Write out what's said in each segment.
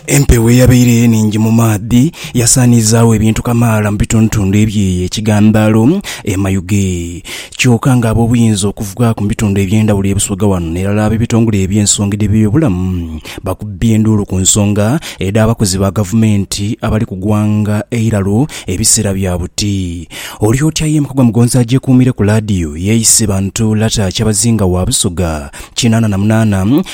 Empewo eyabaire enhingi mu maadhi yasaaniizaagho ebintu kamaala mu bitundutundu ebye kigandaalo e Mayuge. Kyoka nga ab'obuyinza okuva ku bitundu eby'endhawulo e Busoga wano n'erala ab'ebitongole eby'ensonga edh'ebyobulamu bakubbye enduulu ku nsonga edh'abakozi ba gavumenti abali ku gwanga eiralo ebiseera bya buti. Oli otya ye Mukogwa Mugonzi agyekuumire ku laadiyo y'eise bantu Lata Kyabazinga wa Busoga kinaana na munaana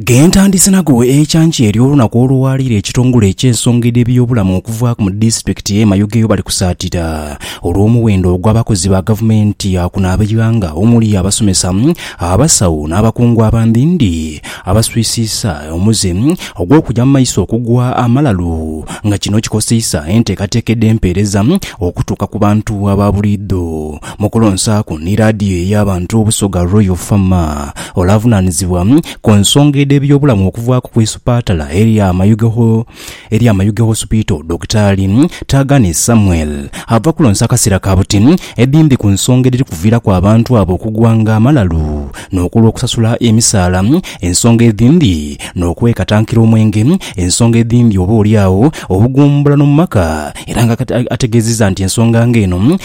Gentandise nago ekyankya ery'olunaku olwaleero ekitongole eky'ensonga edh'ebyobulamu okuvaaku mu disitulikiti y'e Mayugeyo bali kusaatira olw'omuwendo ogw'abakozi ba gavumenti ya kuno ab'eighanga omuli abasomesa, abasawo n'abakungu abandhindhi abaswisiisa omuze ogw'okugya mu maiso okugwa amalalu nga kino kikoseisa enteekateeka edh'empeereza okutuuka ku bantu aba buliidho. Mu kulonsaaku ni laadiyo ey'abantu Busoga Royal Fama, ole avunaanizibwa ku nsonga edh'ebyobulamu okuvaaku ku isupatala erya Mayuge erya Mayuge Hospital Dokitaali Taagane Samuel ava kulonsa akasera ka buti edhimbi ku nsonga edhiri kuviiraku abantu abo okugwanga amalalu n'okulwa okusasula emisaala ensonga edhimbi n'okwekatankira omwenge ensonga edhimbi oba oli agho obugumbulano mu maka era nga ategeziza nti ensonga nga eno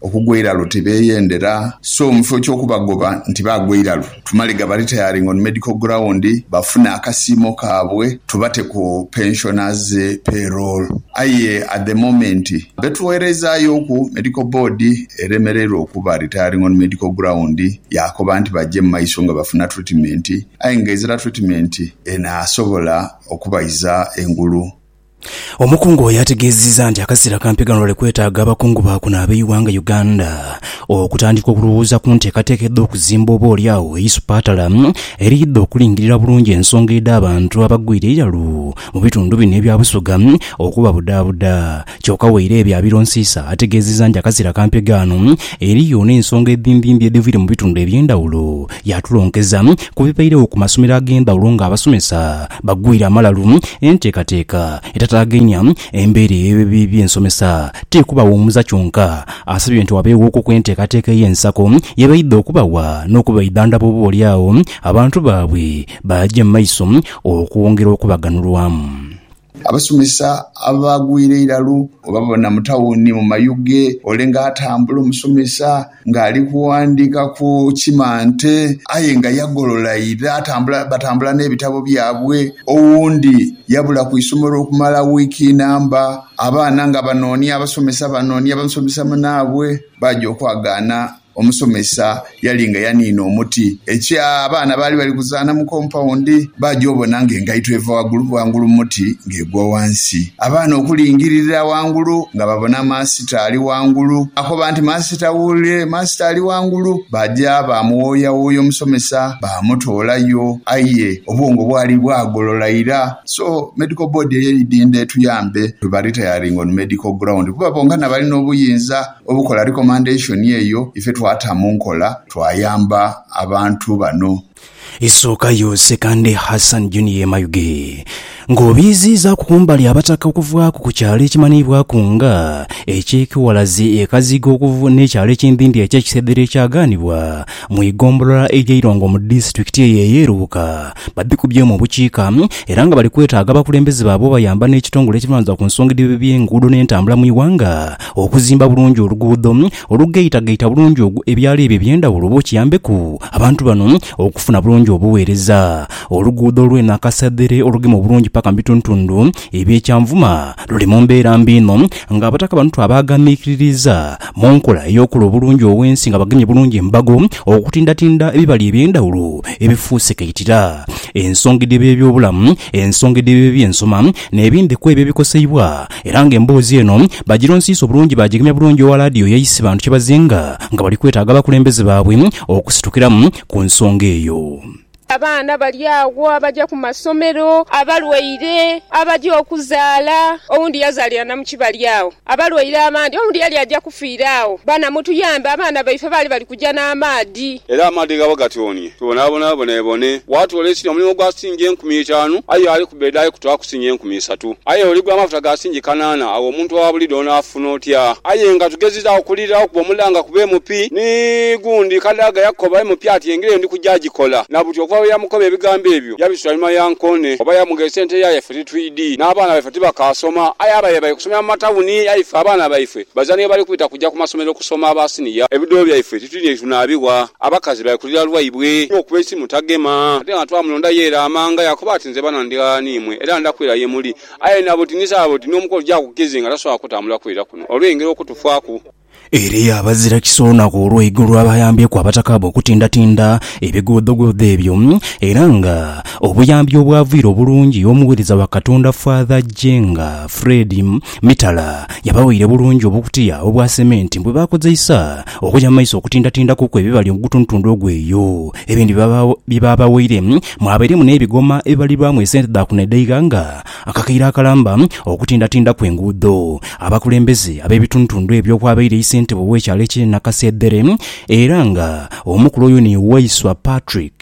Okugwa eiralu tibeeyendera, so mu kifo ky'okubagoba nti baagwa eiralu, tumale gaba retiring on medical ground bafune akasiimo kaabwe tubate ku pensioners pay roll. Aye at the moment betugherezaayooku Medical Board eremereirwa okuba retiring on medical ground yaakoba nti baje mu maiso nga bafuna treatment aye nga ezira treatment enaasobola okubaiza engulu. Omukungu oyo ategeezezza nti akaseera kampi gano bali kwetaaga abakungu ba kuno ab'eighanga Uganda okutandika okulowooza ku nteekateeka edh'okuzimba oba oli agho eisupatala eriidha okulingirira bulungi ensonga edh'abantu abagwire eiralu mu bitundu bino ebya Busoga okubabudaabuda kyoka Waireebye abironsiisa ategeezezza nti akaseera kampi gaano eriyo n'ensonga edhimbimbi edhiviire mu bitundu eby'endhawulo Yaatulongeza ku bibairegho ku masomero ag'endhawulo ng'abasomesa bagwire amalalu. Enteekateeka etataagainia embeera eyo ebibi by'ensomesa ti kubaghumuza kyonka, asabye nti wabeeghoku kw'enteekateeka ey'ensako ye baidha okubawa n'okubaidhandhaba oboolyawo abantu baabwe baaje mu maiso okwongera okubaganhulwamu. Abasomesa abagwira eiralu oba bona mu tawuni mu mayuge ole nga atambula omusomesa nga ali kughandika ku kimante aye nga yagolola ira atambula batambula n'ebitabo byabwe. Owundi yabula ku isomero okumala wiiki namba abaana nga banoonia abasomesa banoonia musomesa munaabwe baja okwagaana. Omusomesa yali nga yaniina omuti. Ekya, abaana baali bali kuzaana mu kompawundi. Baja obona nga engaito eva wagulu wangulu mu muti nga egwa wansi. Abaana okulingirira wangulu nga babona Maasita ali wangulu. Baakoba nti, Maasita wuule! Maasita ali wangulu! Baaja baamuwooyawooya omusomesa, baamutoolayo. Aye obwongo bwali bwagolola ira. So, Medical Board eyo eidhindha etuyambe tubaritairinge on medical ground kuba bonka nabali n'obuyinza. Obukola recommendation eyo ife twata mu nkola twayamba abantu bano. Isooka yo Sekande Hassan Junior Mayuge ng'obiiziizaaku kumbali Abataka okuvaaku ku kyalo ekimanhiibwaku nga eky'e Kiwalazi e Kazigo n'ekyalo eky'empimpi eky'e Kisedhere ekyagaanibwa mu igombolola ey'e Irongo mu disitulikiti eyo ey'e Lubuka babikubyemu obukiika era nga bali kwetaaga abakulembeze baabwe obayamba n'ekitongole ekirunanza ku nsonga edh'ebyenguudo n'entambula mu ighanga Okuzimba bulungi oluguudo olugaitagaita bulungi ebyalo ebyo eby'endhawulo oba okiyambeku abantu bano okufuna bulungi obuweereza. Oluguudo olw'e Nakasadhere olugema obulungi paka mu bitundhutundhu eby'e Kyanvuma luli mu mbeera mbi inho ng'abataka bano twabaaghanhikiririiza mu nkola ey'okula obulungi ow'ensi nga bagemye bulungi embago okutindatinda ebibali eby'endhawulo ebifuuse kaitira ensonga edh'eby'ebyobulamu, ensonga edh'eby'ebyensoma n'ebindhi kw'ebyo ebikoseibwa era nga emboozi eno bagironsiisa obulungi baagigemya bulungi owa laadiyo yaisi bantu kye bazinga nga bali kwetaaga abakulembeze baabwe okusitukiramu ku nsonga eyo. Abaana bali agho abaja ku masomero, abalwaire, abaja okuzaala, owundi yazaalira na mu kibali agho, abalwaire abandi, owundi yali aja kufiira agho, bana mutuyambe abaana baife baali bali. kuja n'amaadhi. Era amaadhi ghaba gatyonie tubonabona bonebone. Bwatwoola ekiri omulimu gwa sitingi enkumi itaanu, aye ali ku beedi ali kutwaaku sitingi enkumi isatu. Aye oligula amafuta ga sitingi kanaana, agho omuntu owa buliidho onaafuna otya? Aye nga tugezizaagho okuliirira okuba omulanga ku BMP, ni gundi Kadaga yakoba MP ati engira eyo ndi kuja agikola. Na buti okuva lwe yamukoba ebigambo ebyo, yabisuula einhuma ya nkoone. Oba yamugheesa ente yaaya ife titwidhi, n'abaana baife tibakaasoma. Aye abaire bali kusomera mu matawuni, aye ife abaana baife Bazaani ghebali kubita kuja ku masomero kusoma aba siniya. Ebidole byaife titulina ye tunaabigha. Abakazi bali kulira lwaibwe. N'okuba eisimu tagema. Ate nga twamulonda yeera amanga yaakoba ati, Nze bano ndi ghala n'imwe, era nda kwira ye muli. Aye nabo ti ni saabo ti n'omukono ti agukize nga tasobola kutambula kwira kuno olw'engeri okutufaaku. Era eyo abazira kisa olunaku olw'eigulu abayambyeku abataka be okutindatinda ebigoodhogoodho ebyo, era nga obuyambi obwavaire obulungi omuweereza wa Katonda Father Jenga Fred, Mitala yabawaire bulungi obukutiya obwa sementi ni bwe baakozeisa okuja mu maiso okutindatindakuku ebibali ogutundutundu ogw'eyo. Ebindi bye baabawaire mwabairemu n'ebigoma ebibalirwamu esente dha kuno edh'eighanga nga akakaire akalamba okutindatindaku enguudo. Abakulembeze ab'ebitundutundu ebyo okwabaire Isentebe ow'ekyalo eky'e Nakaseedhere era nga omukulu oyo ni Waiswa Patrick,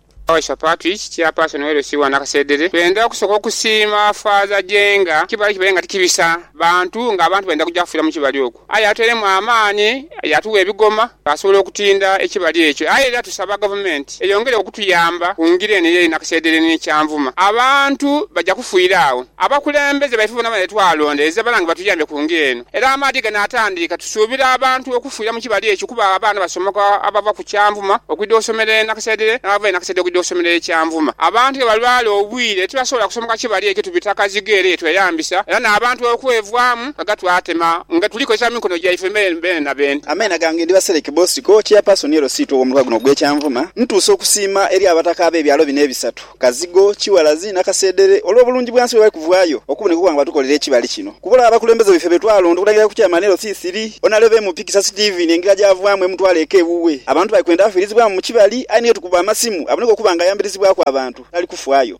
Usher Patrick Chairperson we LC wa Nakasedere, Twendha kusooka okusiima Faaza Jenga kibali kibale nga tikibisa bantu nga abantu baidha kuja kufiira mu kibali okwo aye yatuteiremu amaani yaatugha ebigoma twaasobola okutinda ekibali ekyo aye era tusaba gavumenti eyongere okutuyamba ku ngira eno ey'e Nakasedere n'e Kyanvuma abantu baja kufiira agho abakulembeze baife boona bona betwalondereza balange batuyambe ku ngira eno. Era amaadhi ganaatandiika. Tusuubira abantu okufiira mu kibali ekyo kuba abaana basomoka abava ku Kyanvuma okwidha osomera e Nakasedhere n'abava e Nakasedhere okwidha osomera e Kyanvuma. Abantu ghe balwala obwire tibasobola kusomoka kibali ekyo tubita Kazigo ere ye tweyambisa era n'abantu okwevaamu nga twatema nga tuli kozesa mikono gyaife beene na beene. Ameena gange ndi Baseleki Bosiko, Chairperson LC2 ow'omuluka guno ogw'e Kyanvuma. Ntuusa okusiima eri Abataka ab'ebyalo bino ebisatu Kazigo, Kiwalazi nakaseedhere olw'obulungi bwansi bwebali kuvaayo okuboneka okuba nga batukolera ekibali kino. Kubula abakulembeze baife betwalonda okulagira ku Chairman LC thiri, Onalebe MP Kisa Steven engira gyavaamu emutwala eka ewuwe. Abantu bali kwenda afiirizibwamu mu kibali aye niyo tukuba amasimu aboneka okuba nga ayambirizibwaku abantu tali kufaayo.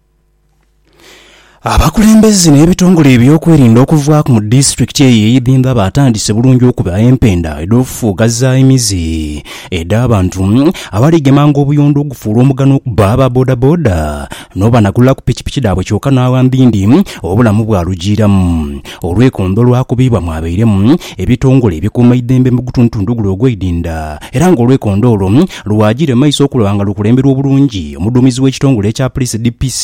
Abakulembeze n'ebitongole ebyokwerinda okuva ku mu disitulikiti eyo ey'e Bimba baatandise bulungi okuba empenda edh'ofufugaza emize edh'abantu abali gemanga obuyondo ogufuula omugano okuba aba bodaboda n'obanagula ku pikipiki dhaabwe kyoka n'awambindi obulamu bwalujiiramu olwekondo olwakubibwa mwabairemu ebitongole ebikuumaidhembe mu gutundutundu guno ogweidinda era nga olwekondo olwo lwajiire mu maiso okulaba nga lukulemberwa obulungi omuduumizi w'ekitongole ekya Poliisi DPC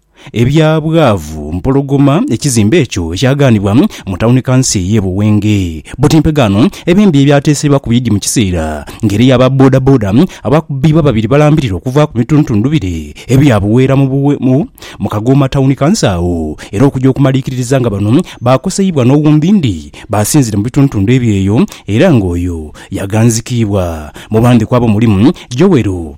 ebya bwavu mpologoma ekizimbe ekyo ekyagaanibwa mu tawuni kanso ey'e Buwenge. Buti mpegaano ebimbi ebyateesebwa ku bidhi mu kiseera ng'eriyo aba bodaboda abaakubibwa babiri balambirira okuva ku mituntundu bire ebya Buweera mu Kagooma tawuni kanso agho era okuja okumaliikiririza nga bano baakoseibwa n'owumbindi baasinzire mu bituntundu ebyo eyo era ng'oyo yaghanzikiibwa. Mu bandhikwa abo mulimu Joel.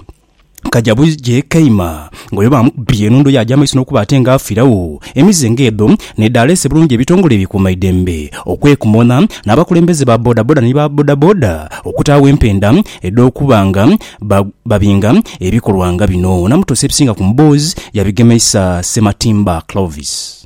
Kaja bwije kaima ng'oyo baamukubye enhundu yaaja amaiso n'okuba ate nga afiiragho. Emize ng'edho n'edhaleese bulungi ebitongole ebikuuma eidembe okwekumona n'abakulembeze ba bodaboda ni ba bodaboda okutaagho empenda edh'okuba nga babinga ebikolwa nga bino. Namutosa ebisinga ku mboozi yabigemeisa Ssematimba Clovis.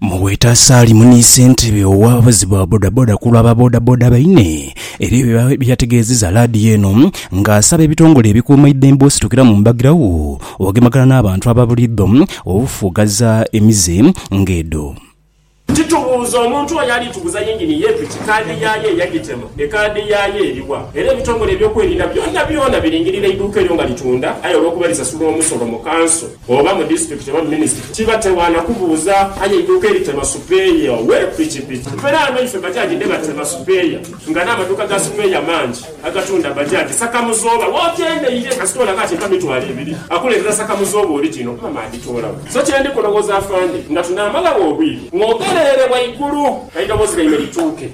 Muweta Salim ni ssentebe ow'abavuzi ba bodaboda ku lwa ba bodaboda baine ebyo bye yategeezezza laadiyo eno nga asaba ebitongole ebikuuma eidembe ositukira mu mbagirawo ogemagana n'abantu ababuliidho obufugaza emize ng'edho. Titubuuza omuntu oyo ali tuguza yingini ye piki kaadi yaayo eyagitema. Ekaadi yaayo eri wa? Era ebitongole eby'okwerinda byonabyona biringirira eiduuka eryo nga litunda aye olw'okuba lisasula omusolo mu kanso, oba mu disitulikiti oba mu minisitule, kiba tewaana kubuuza aye eiduuka eritema supeeya we pikipiki. Era ghano ife bajaji dhe batema supeeya nga n'amaduuka ga supeeya mangi agatunda bajaji sakamuzooba w'okendeire kasita olaga ati mpa mitwalo ebiri akuleetera sakamuzooba orijino okuba maagitoolawo. So kye ndi kulowooza afande nga tunaamalawo obwire ng'ogereere waigulu eidoboozi lyaimwe lituuke.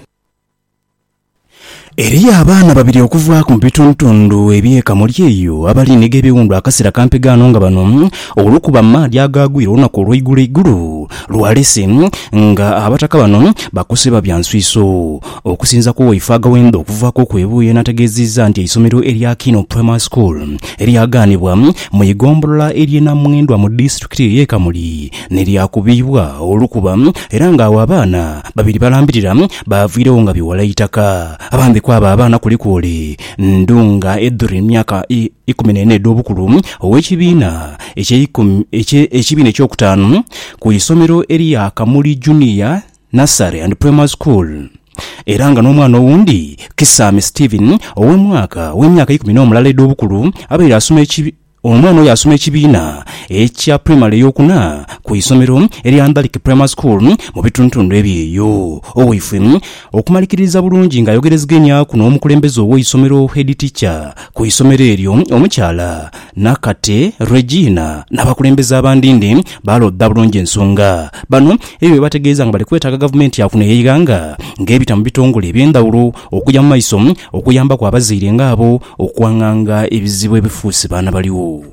Eriyo abaana babiri okuvaaku mu bitundutundu eby'e Kamuli eyo abali ni gh'ebiwundu akasera kampi ghano nga bano olwokuba amaadhi agaagwire olunaku olweigulo eigulu lwalese nga abataka bano bakosebwa bya nswiiso. Okusinza ku waife Agawenda okuva ku Kwebuye n'ategeeziza nti eisomero erya Kiino Primary School eryagaanibwa mu igombolola ery'e Namwendwa mu disitulikiti ey'e Kamuli ni lyakubiibwa olukuba era nga agho abaana babiri balambirira Baaviiregho nga bighala eitaka. Abandi ku abo abaana kuliku oli Ndunga Edrine myaka ikumi n'ena edh'obukulu, ow'ekibiina eky'ekibiina eky'okutaanu ku isomero erya Kamuli Junior Nursery and Primary School era nga n'omwana owundi Kisaame Stephen ow'emyaka ow'emyaka ikumi n'omulala edh'obukulu abaire asoma Ono ono yaasoma ekibiina ekya pulayimale ey'okuna ku isomero erya Ndhalike Primary School mu bitundutundu eby'eyo. Owaifwe okumalikiririza bulungi ng'ayogereziganyaku n'omukulembeze ow'eisomero Head Teacher ku isomero eryo omukyala Nakate Regina n'abakulembeze abandinde baalodha bulungi ensonga bano ebyo bye bategeeza nga bali kwetaaga gavumenti ya kuno ey'eighanga ng'ebita mu bitongole eby'endhawulo okugya mu maiso okuyambaku abazaire ng'abo Okwanganga ebizibu ebifuuse baana baligho.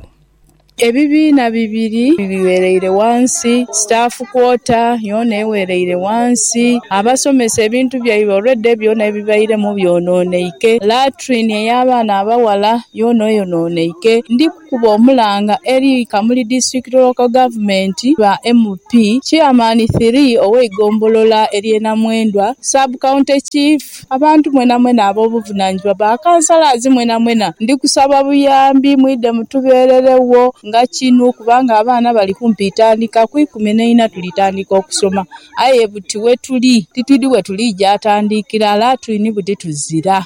Ebibiina bibiri biwereire ghansi, staff quarter yoona ewereire ghansi, abasomesa ebintu byaibwe already byona ebibairemu byononeike, latrine eya baana abaghala yoona eyononeike. Ndi. kuba omulanga eri Kamuli District Local Government ba MP, Chairman ii ow'eigombolola erye Namwendwa, Sub County Chief, abantu mwenamwena ab'obuvunanizibwa, ba Councillors mwenamwena ndi kusaba buyambi mwidhe mutubereregho nga kinu kubanga abaana bali kumpi tandika ku ikumi n'eina tuli tandika okusoma aye buti wetuli titwidhi wetulija tandikira lati ni buti tuzira.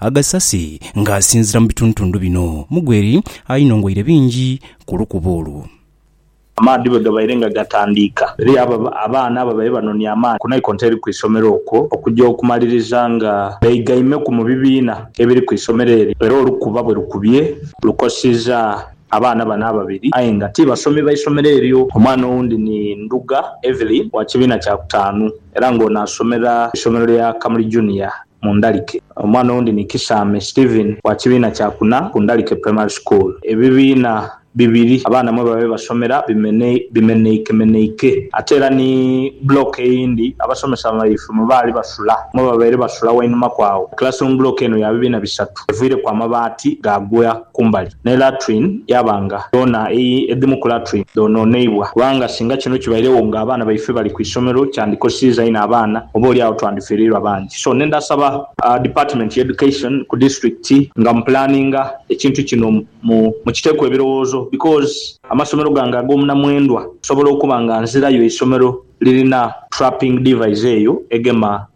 Agasasi nga asinzira mu bitundutundu bino mugweri ainongweire bingi ku lukuubo olwo. Amaadhi bwe gabaire nga gatandiika, eriyo abo abaana ababaire banonia amaani ku naikonto eri ku isomero okwo okuja okumaliriza nga beigaimeku mu bibiina ebiri ku isomero eryo era olukuba bwe lukubye lukosiiza abaana bano ababiri aye nga ti basomi ba isomero eryo. Omwana owundi ni Ndhuga Evelyn wa kibiina kya kutaanu era nga ono asomera ku isomero lya Kamuli Junior. mu ndalike. Omwana owundi ni Kisaame Steven wa kibiina kya kuna ku Ndalike Primary School. Ebibiina bibiri abaana mwe babaire basomera bimenheikemenheike ate era ni block eyindi abasomesa baife mwe baali basula mwe babaire basula wainuma ku agho. Classroom block eno ya bibiina bisatu eviireku amabaati gaagwa kumbali. ne latrine yaaba nga yoona ii, edhimu ku latrine dhonooneibwa, kubanga singa kino kibairegho nga abaana baife bali ku isomero kyandikoseiza inho abaana, oba oli agho twandifereirwa bangi. So ne ndhasaba Department ya Education ku district nga mu planinga ekintu kino mu mukiteeku ebirowoozo because amasomero gange ag'omunamwendwa nsobola okuba nga nzirayo isomero lirina trapping device eyo egema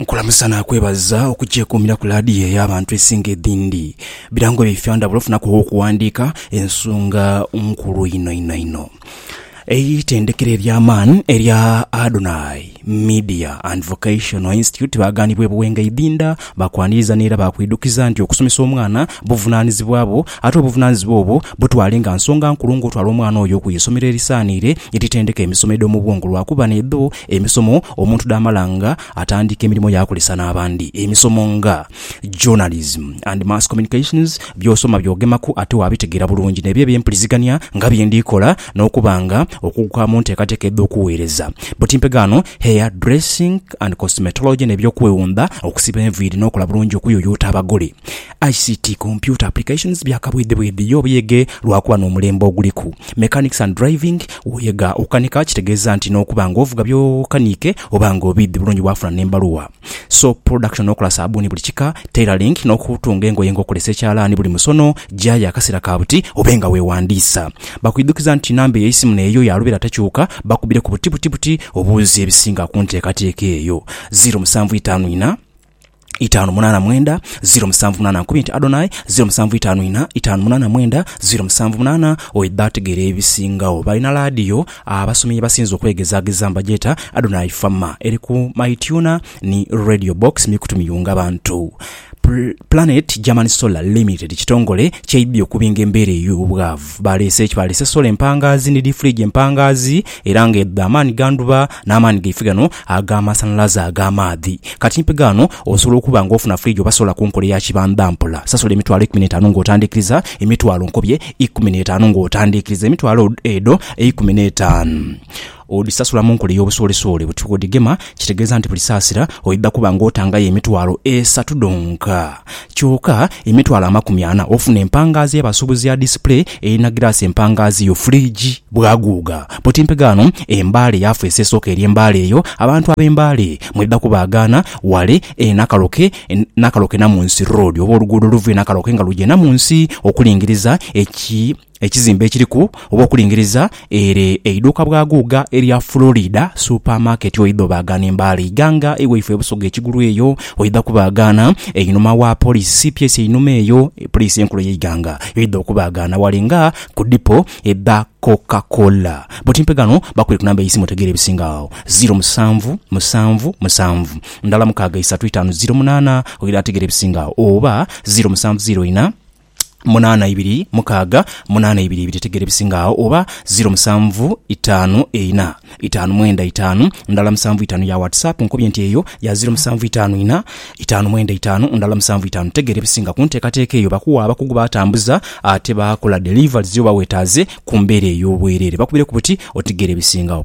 Nkulamusa nakwebaza okukyekuumira ku laadiyo ey'abantu esinga edhindi. Birango byaife ndhabula ofunaku ow'okuwandiika ensonga nkulu inho inho inho. Eitendekero ery'amaani erya Adonai Media and Vocational Institute baagaanibwa e Buwenga Idhinda, baakwaniriza n'era baakwidukiza nti okusomesa omwana buvunaanizibwa bwo ate obuvunaanizibwa obwo butwale nga nsonga nkulu ng'otwala omwana oyo ku isomero erisaaniire eritendeka emisomo edh'omu bwongo lwakuba n'edho Emisomo omuntu dhaamala nga atandiika emirimo yaakolesa n'abandi. Emisomo nga Journalism and Mass Communications by'osoma by'ogemaku ate waabitegeera bulungi n'ebyo eby'empulizigania nga bye ndi kola n'okuba nga okuguka mu nteekateeka edh'okuweereza buti mpegaano, Hair dressing and Cosmetology n'eby'okwewundha, okusiba enviiri n'okola bulungi okuyuyuuta abagole. ICT, Computer Applications, bya kabwidhibwidhi ye obuyege lwakuba n'omulembe oguliku. Mechanics and Driving, Woyega okukanika kitegeeza nti n'okuba nga ovuga by'okaniike oba nga obiidhi bulungi waafuna n'embaluwa. Soap Production, Okola saabbuuni buli kika. Tailoring, N'okutunga engoye nga okozesa ekyalaani buli musono, gyaaya akaseera ka buti obe nga weewandiisa. Bakwidhukiza nti namba ey'eisimu n'eyo ya lubeera tekyuka, bakubire ku buti buti buti obuuze ebisinga ku nteekateeka eyo. Ziro musanvu itaanu ina. itaanu munaana mwenda ziro musanvu munaana nkumi nti Adonai ziro musanvu itaanu ina itaanu munaana mwenda ziro musanvu munaana oyo bategera ebisingao balina laadiyo abasomi yebasinze okwegezageza mbagyeta Adonai Fama eri ku My Tuna ni Radio Box mikutu miyunga bantu Planet German Solar Limited kitongole kyaidhi okubinga embeera eyo bwaavu baleese ki baleese solar empangaazi ni dii fridge empangaazi era nga edho dha maani ga ndhuba n'amaani gaife gano ag'amasanhalaze, ag'amaadhi. Kati mpi gaano osobola okuba nga ofuna fridge oba solar ku nkola eya kibanda mpola. Sasula emitwalo eikumi n'etaanu ng'otandiikiriza, emitwalo nkobye eikumi n'etaanu ng'otandiikiriza, emitwalo edho eikumi n'etaanu odhisasula mu nkola ey'obusoolesoole. Buti bw'odhigema kitegeeza nti buli saasira oidha kuba ng'otangayo emitwalo esatu dhonka. Kyoka emitwalo amakumi ana ofuna empangaazi ya basubuzi ya display erina giraasi empangaazi yo fridge bwaguuga buti mpega ghano e Mbale yafeesi esooka eri e Mbale eyo abantu abe Mbale mweda kubaagaana wale e Nakaloke Nakaloke Namunsi road oba oluguudo oluva e Nakaloke nga luja e Namunsi okulingiriza e Ekizimbe ekiriku oba okulingiriza ere eiduuka bwa guuga erya Florida Super Market oidha obaagaana embaale eighanga ewaifo e Busoga ekigulu eyo oidha kubaagaana einhuma wa Police cps einhuma eyo Police enkulu eyeighanga yoidha okubaagaana wale nga ku dipo edha Coca Cola. Butimpe ghano bakubire ku namba eisimu otegeere ebisinga agho ziro musanvu musanvu musanvu ndhala mukaaga isatu itaanu ziro munaana oidha ategeera ebisinga agho oba ziro musanvu ziro ina. munaana ibiri mukaaga munaana ibiri ibiri tegeera ebisinga agho oba ziro musanvu itaanu eina itaanu mwenda itaanu ndala musanvu itaanu ya WhatsApp nkobye nti eyo ya ziro musanvu itaanu ina itaanu mwenda itaanu ndala musanvu itaanu tegeera ebisinga kunteekateeka eyo bakuwa abakugu batambuza ate bakola deliveries yo bawetaaze kumbeera eyobwerere bakubireku buti otegeera ebisingagho.